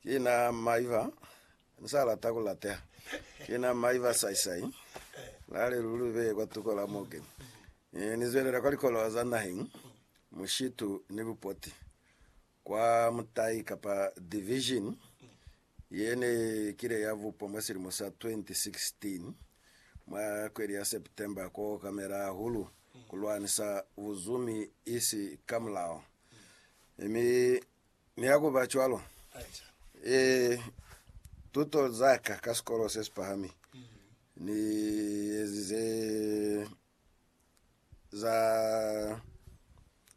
Ki na maiva, ni sa lata ku lateha. Ki na maiva saisai, la le lu lu beye kwa tuko la mo keni. Ni, ni zwelela kwa likolowa za naheng, mushitu ni bupoti, kwa mutai kapa division ye ne kile ya bupwa mwa silimo sa 2016, mwa kweli ya September, ku okamela hahulu ku lwanisa buzumi isi ka mulao. Mi Mi ha ku ba cwalo, e, tuto za ka ka sikolo se si pahami ni ezize za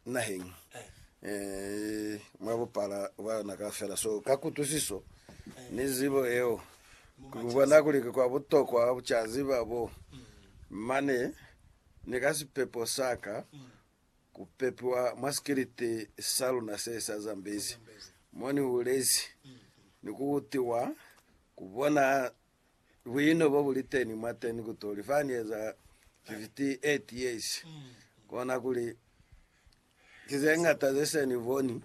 naheng e, mwa bupala bwa yona kaufela. So, ka kutwisiso ni zibo yeo, ki ku bona kuli ki kwa butokwa ku ca ziba bo mane ni ka sipepo sa ka. Ku pepiwa mwa sikiliti sa luna se sa Zambezi mo ni hulezi, ni ku utiwa ku bona buino bo bu li teni mwateni ku tuli fa ni eza 58 years. Kona kuli ki ze ñata ze se ni boni.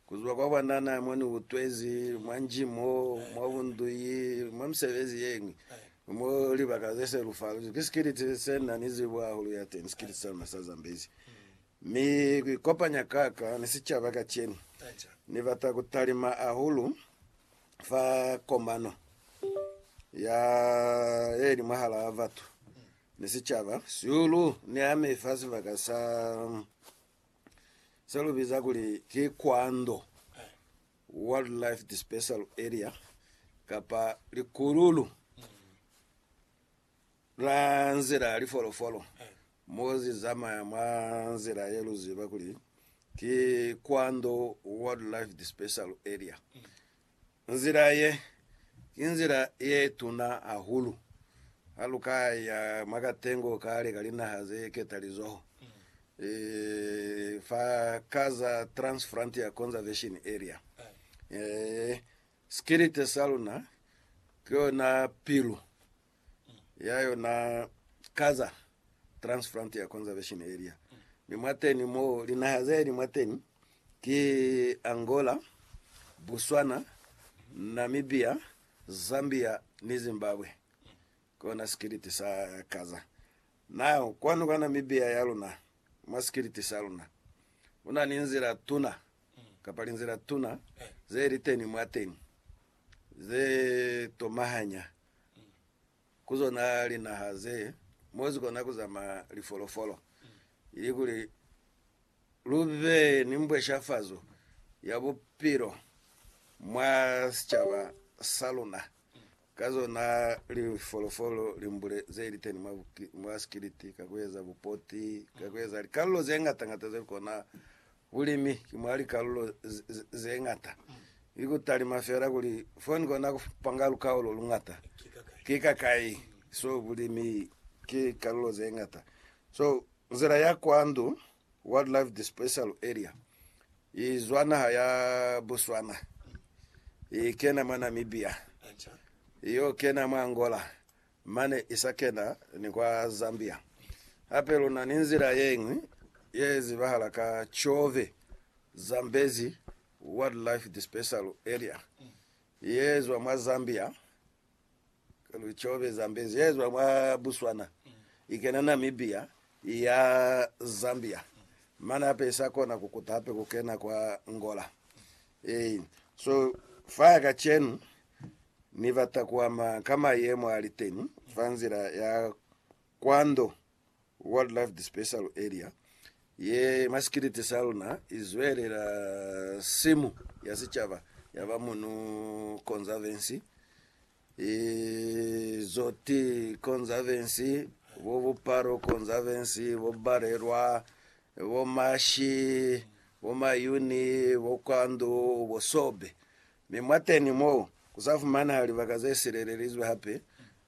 Ku zwa kwa banana mo ni utwezi, mwa nji mo, mwa bunduyi, mwa misebezi ye ñwi, mo libaka ze se lu faluzi, ki sikiliti se na ni zibo hahulu ya teni, sikiliti sa luna sa Zambezi. Mi ku ikopanya ka ka ni sicaba kacenu, Ni bata ku talima hahulu fa komano ya ye li mwahalaa batu ni sicaba, sihulu ni ami fa sibaka sa. se lu biza kuli ki Kwando Wildlife Dispersal Area kapa likululu la nzila ya lifolofolo mo zi zamaya mwa nzila ye lu ziba kuli ki Kwando Wildlife Dispersal Area. Nzila ye, ki nzila ye tuna hahulu ha lu ka ya mwa katengo kale ka linaha ze ketalizoho, fa ka za Trans-Frontier Conservation Area. Sikilite sa luna ki yona pilu ya yona Gaza Trans Frontier Conservation Area, mi mwateni mo linaha zeli mwateni ki Angola, Botswana, Namibia, Zambia ni Zimbabwe. Kona sikiliti sa Gaza. Nao kwanu kwa Namibia ya luna, mwa sikiliti sa luna, kuna ni nzila tuna kapa linzila tuna ze liteni mwateni ze tomahanya ku zona linaha ze mo zi kona ku zamaya lifolofolo, ilikuli lu be ni mbweshafazo ya bupilo mwa sicaba sa luna ka zona lifolofolo limbule ze li teni mwa sikiliti, ka ku eza bupoti, ka ku eza likalolo ze ñata-ñata ze lu kona Bulimi ki mwa likalulo ze ñata, ki ku talima fela kuli fo ni kona ku panga lukaulo lu ñata. Ki kakai? So, bulimi ki kalulo ze ñata. So, nzila ya kwa ndu, Wildlife Dispersal Area, i zwa naha ya Botswana, i kena mwa Namibia, i yo kena mwa Angola, Mane i sa kena ni kwa Zambia. Hape lu na ni nzila ye ñwi ye zibahala ka Chove, Zambezi Wildlife Dispersal Area, ye zwa mwa Zambia, Chove, Zambezi, ye zwa mwa Botswana, i kena Namibia, i ya Zambia. Mane hape i sa kona ku kuta hape ku kena kwa Angola. Hey, so faya kacenu Ni bata kuama ka mayemo aliteni fa nzila ya kwando Wildlife Dispersal Area ye masikiliti sa luna izwelela simu ya sicaba yaba Munu Conservancy Izot Conservancy, bo Bupalo Conservancy, bo Balelwa, bo Mashi, bo Mayuni, bo Kwandu, bo Sobe. Mi mwateni mo, kusafumaneha libaka zesilelelizwe hape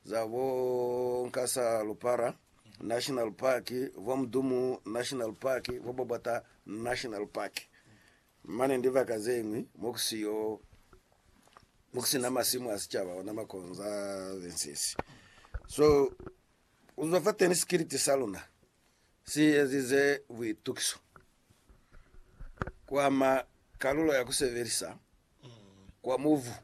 za bo Nkasa-Lupara National Park, bo Mdumu National Park, bo Bobota National Park. Mane ndibaka zeñwi mokusina masimu a sicaba ona makonza bensisi so kuzwa fateni sikiliti saluna si ezize buitukiso kwama kalulo ya kusebelisa kwa mubu